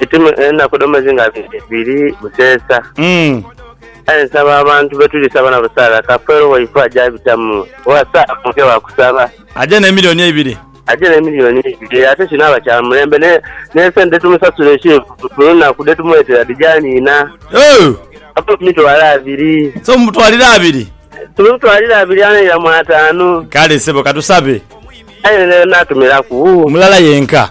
Itume enaku dho mwezi nga biri buseesa. Aye nsaba abantu betuli saba nabo Sarah Kafeero waife aje abitamu oba Sarah Funke wa kusaba. Aje ne milioni eibiri. Aje ne milioni eibiri ate kinaaba kya mulembe ne ne sente dhe tumusasula ekintu buli lunaku dhe tumweetera dhija niina. Ooh. Ave ku mitwalo abiri. So mumutwalire abiri? Tumutwalire abiri anaira mu ataanu. Kale sebo katusabe. Aye n'atumiraku. Mulala yenka.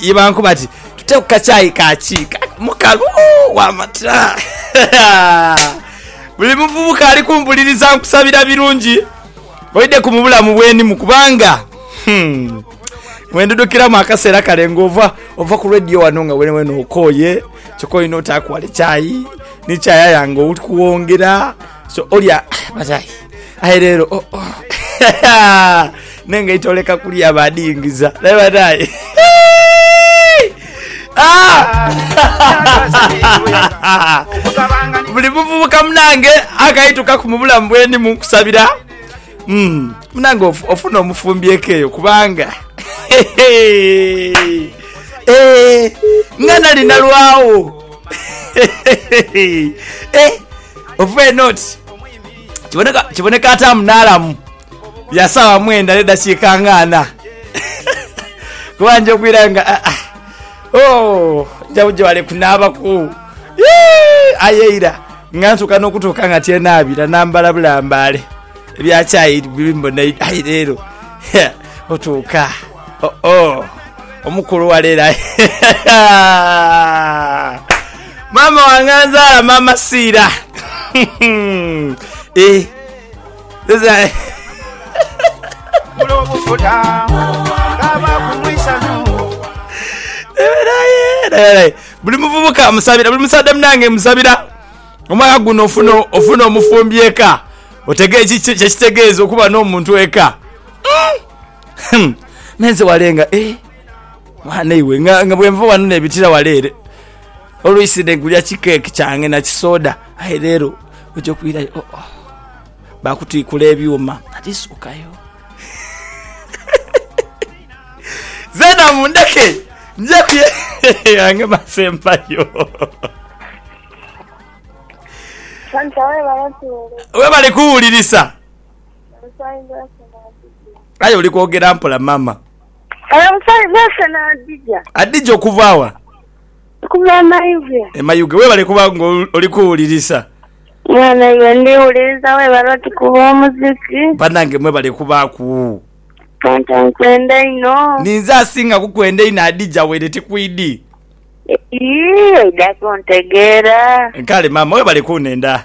Ye bankuba ati tute ku kacaayi ka kiika mukalu w'amata. Buli muvubuka ali kumpuliriza nkusabira birungi oidheku mu bulamu bwenimu kubanga hmm, wendudukiramu akaseera kale nga ova ova ku radio wano nga wenewena okooye kyoka olina otaaku wale chai ni chai aya nga oli kuwongera so olya bazayi aye lero oh, oh. nengaito oleka kulya badingiza naye banaye ah! buli muvubuka munange akaitukaku mu bulamu bweni munkusabira hmm, munange ofuna omufumbyeko eyo kubanga eh, nga nali nalwawo eh, Ova eno oti kiboneka kiboneka ataamu n'alamu ya saawa mwenda n'eddakiika nga ana kuba nja okwirayo nga ah, ah. Oh, nja buja wale kunaabaku Yee, aye eira nga ntuuka n'okutuuka nga tyenaabira nambala bulambaale ebya chai biri mbona aye leero otuuka Oh-oh! Omukulu wa leero aye. Maama wange anzaala, Maama Siira. Eh, eza- Eberaye, naye, buli muvubuka amusabira buli musadde munange musabira omwaka guno ofuna ofuna omufumbi eka otege eki- kyekitegeeza okuba n'omuntu eka Hum! Me nze wale nga, eh! Mwana iwe, nga, nga bwe nva wano nebitira wale ere. Oluisi ne gulya ki cake kyange na ki soda. Aye leero oja okwirayo, oh, oh. Bakutwikula ebyuma. Ati suukayo. Zena mundeke nje kuye yange mase mpayo. Santa webale kuwulirisa. Webale kuwulirisa. Aye oli kwogera mpola mama. Adija okuva wa? E Mayuge. Webale kuba nga oli kuwulirisa. Banange mwebale kubaaku. Ninze asinga kukwenda einho Adija waire ti kwidi. Kale mama webale kunenda.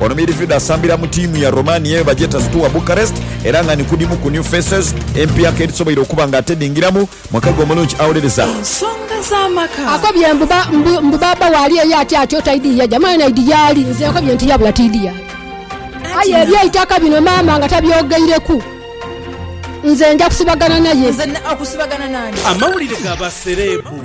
Ono midfielder asambira mu tiimu ya Romania eyo bagyeta Steaua Bucharest era nga ni kudimu ku new faces empyaka edhisoboire okuba nga atedhingiramu mwaka gwe omulungi awolereza. Akobye mbu ba, mbu, mbu baaba waali eyo ati atyo taidhi yaja. Mwana idi yaali? Nze nkobye nti yabula tiidhi yaali. Aye ebyeitaka bino maama nga tabyogeireku, nze nja kusibagana naye. Amawulire ga ba sereebu.